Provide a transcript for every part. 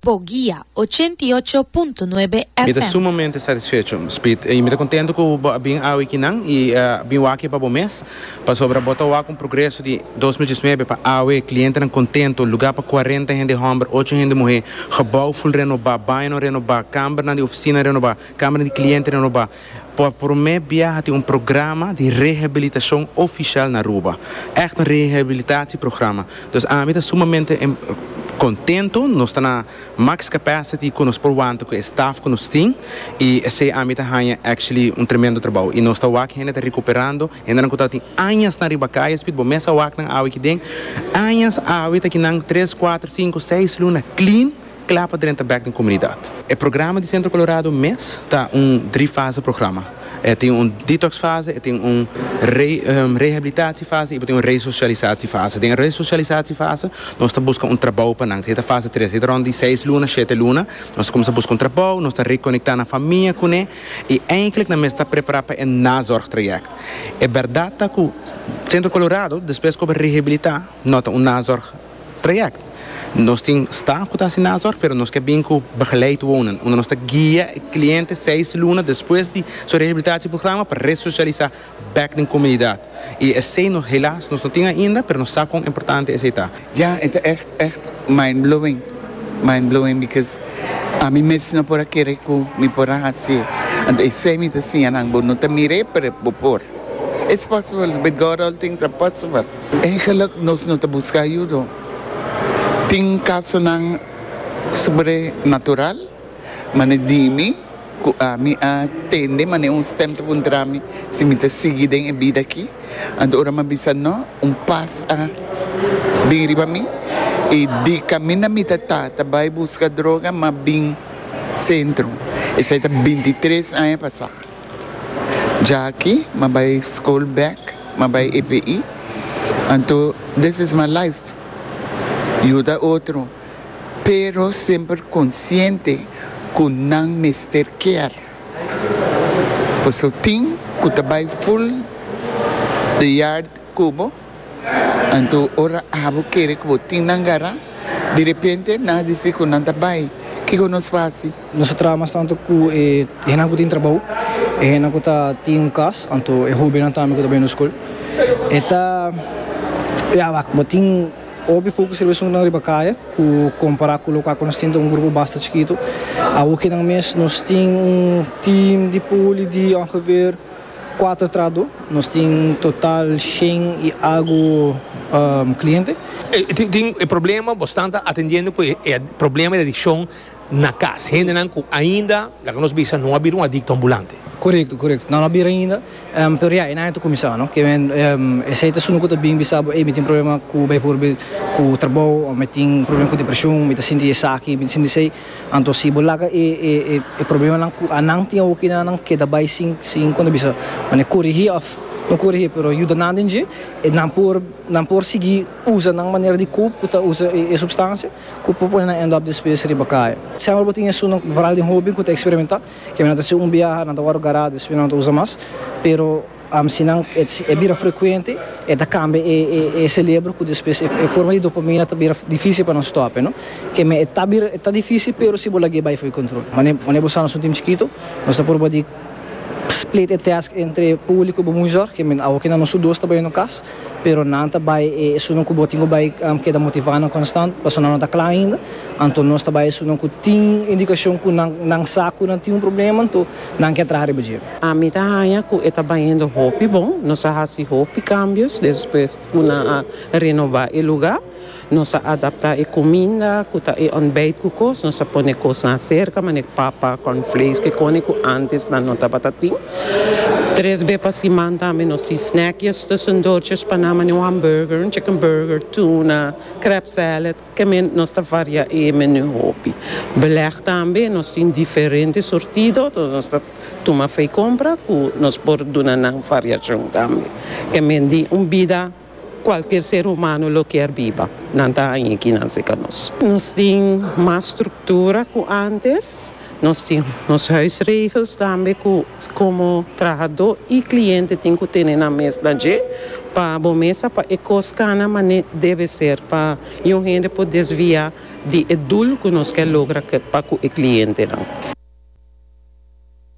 Bo guia, ochenta i ocho punto nuebe Mi ta FM. sumamente satisfecho, Speed, i mi ta kontentu ku bo a bin awe aki nan i a bin wak aki pa bo mes, pasobra bo ta wak un progreso di dos mil diesnuebe pa awe, klientenan kontentu, lugá pa kuarenta hende hòmber, ocho hende muhé, gebou ful renobá, bañonan renobá, kambernan di ofisina renobá, kambernan di kliente renobá. Por promé bia a tin un programa di rehabilitashon ofishal na Aruba. Ègt un rehabilitatieprograma. Dus ami ta sumamente kontentu. Nos ta na max capacity ku nos por wanta ku e staf ku nos tin i esei ami ta haña actually un tremendo trabou. I nos ta wak hende ta rekuperando, hendenan ku tabata tin añasnan riba kaya Speed bo mes a wak nan awe aki den. Añas awe ta kinan tres, kuater, sinku, seis luna clean. Kla pa drenta bek den komunidat. E programa di Sentro Kolorado mes ta un dri fase programa. E tin un detox fase, e tin un rehabilitatie fase i bo tin un resocialisatie fase. Den e resocialisatie fase nos ta buska un trabou pa nan. Esei ta fase tres. Esei ta rond di seis luna, shete luna. Nos ta kuminsá buska un trabou, nos ta rekonektá nan famia kuné i eindelijk nan mester ta prepará pa e nazorg trayèkt. E bèrdat ta ku Sentro Kolorado despues ku a rehabilitá no ta un nazorg trayect. Nos tin staff cu ta haci na azor pero nos ke bin cu begeleid wonen unda nos ta guia e cliente seis luna despues di su rehabilitatieprograma pa resocialisa bek den comunidad y esey nos helaas nos no tin ainda pero nos sa con importante esey ta. Ya e ta echt echt mindblowing mindblowing because ami mes no por a kere cu mi por a hacie anto esey mi ta siña nan bo no ta mire pero bo por it's possible with God all things are possible. Eigenlijk nos no ta busca ayudo. Tin casonan sobrenatural, mane dimi cu ami a tende mane un stem ta puntrami si mi ta sigui den e bida aki. Anto ora mi a bisa no, un paz a bin riba mi y di camina mi ta ta ta bay busca droga mi a bin centro. Esai ta bintitres aña pasa. Jaki ma bay school back ma bay EPI anto this is my life yuda otro pero semper consciente cu nan mester kier pasobra tin cu ta bay full de yard cubo. Anto ora abo kere ku bo tin nan gará, di repente nan a disi ku nan ta bai. Kiko nos fasi? Nos ta traha mas tantu ku e hennan ku tin trabou, e hennan ku ta tin un kas, anto e hóbennan tambe ku ta bai nos skol. E ta, ya wak, bo tin hopi fokus riba esuntunan riba kaya ku kompará ku lokal ku nos tin ta un grupo basta chikitu. Awokenan mes nos tin un tim di poli di ongeveer. Kuater trado, nos tin total shen i algu kliente. Tin e problema, bo stanta atendiendo ku e problema di adikshon na kas, hendenan ku ainda, laga nos bisa, no a bira un adikto ambulante. Korekto, korekto, nan no a bira ainda, pero ya e nan ya ta kuminsá, no? Kiawen esei ta esun ku ta bin bisa bo, ey, mi tin problema ku, beivoorbeeld, ku trabou, òf mi tin problema ku depreshon, mi ta sinti esaki, mi ta sinti esei. Anto si bo laga e e problemanan ku anan tin awoki nan nan keda bai sin sin konta bisa mane korigí òf no korigí pero yuda nan den dje e nan por nan por sigui usa nan manera di kop ku ta usa e supstansia ku por pone nan end-up despues riba kaya. Semper bo tin esun vooral den hoben ku ta eksperimentá ke nan ta hasi un biaha nan ta wòrdu gará despues nan no ta usa mas pero Si nan e bira frekuente e ta kambia e selebro ku despues e forma di dopamina ta bira difísil pa nan stòp. Keme e ta bira e ta difísil pero si bo laga e bai for di kontrol. Manera bo sa nos tintibu chikitu nos ta purba di split e tèsk entre Puli ku bo muizòr, keme awo ke nan nos tur dos ta bai na nos kas. pero nan ta bai e esunnan ku bo tin ku bai keda motivá nan konstant, pasobra nan no ta kla ainda, anto nos ta bai e esunnan ku tin indikashon ku nan nan sa ku nan tin un problema, anto nan ke traha riba dje. Ami ta haña ku e ta baiendo hopi bon, nos a hasi hopi kambios despues ku nan a renobá e lugá. Nos a adaptá e kuminda ku ta e òntbèit ku kos, nos a pone kosnan aserka manera papa, kòrnflakes, kikòne ku ántes nan no tabata tin. Tres be pa siman tambe nos tin snèkjes tussen dortjes pa nan manera un hambùrger, un chicken burger, tuna, krèp sèlèd, kèmè nos ta variá e menú hopi. Belèg tambe nos tin diferente surtido, so nos ta tuma fei kompra ku nos por duna nan variashon tambe, kèmè di un bida. Cualkier ser humano lo kier biba. Nan ta haña kinan si ka nos. Nos tin mas structura cu antes. Nos tin nos huisregels tambe cu como trahador y cliente tin cu tene nan mesna dje pa bo mesa pa e cos cana mane debe ser pa youn hende por desvia di e doel cu nos kier logra pa cu e clientenan.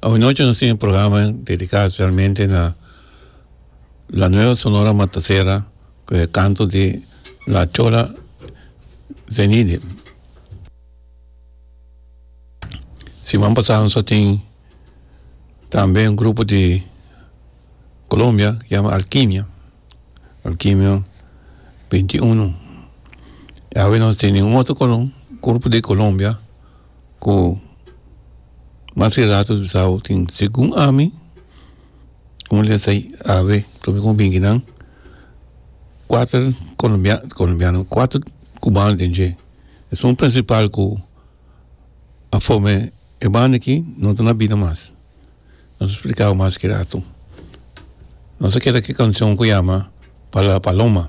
Awanochi nos tin e programa dedica specialmente na La Nueva Sonora Matasera cu e canto di La Chola Zenide siman pasa nos a tin tambe un grupo di Colombia yama Alkimia Alkimia binti uno y awe nos tene un otro colom grupo di Colombia. ku mas ke rato bisao tin segun ami como le sai ave prome como binki nan kuater colombiano colombiano kuater cubano den dje esun principal ku a forme e banda aki no ta na bida mas no ta splikaba mas ke rato nos a keda ke cancion ku yama pala paloma.